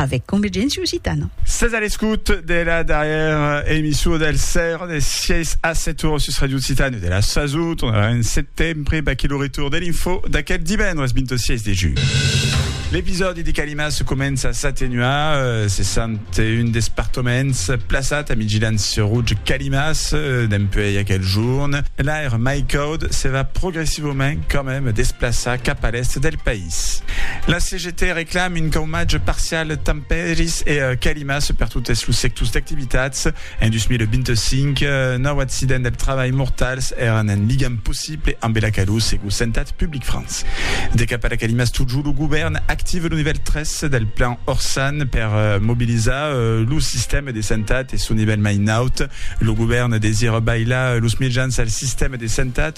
avec Convergència Occitana. Sètz a l'escòut de la darrièra emissó del sèr de 6 a 7 oras sus Radio Occitània de la Saso. Tornarà en setembre, baquí lo retorn de l'Info d'aquel divendres 26 de julh. L'episòdi de Calimas comença a s'atenuar, cessant un despartoments plaçat a Midgilans sur Rouge Calimas dempuèi aquel jorn. L'aire mai caud se va progressivament quand meme desplaçar cap a l'èst del país. País. La CGT reclame un caumatge parcial tant pèris e calimas per totes los sectors d'activitats. En 2025, nòu accidents del trabalh mortals èran un ligam possible ambe la calor, segur Santat Public France. De cap a la calimas totjorn, lo govèrn activa lo nivèl 3 del plan Orsan per mobilizar lo sistèma de santat e son nivèl mai naut. Lo govèrn desira bailar los mejans al sistèma de santat.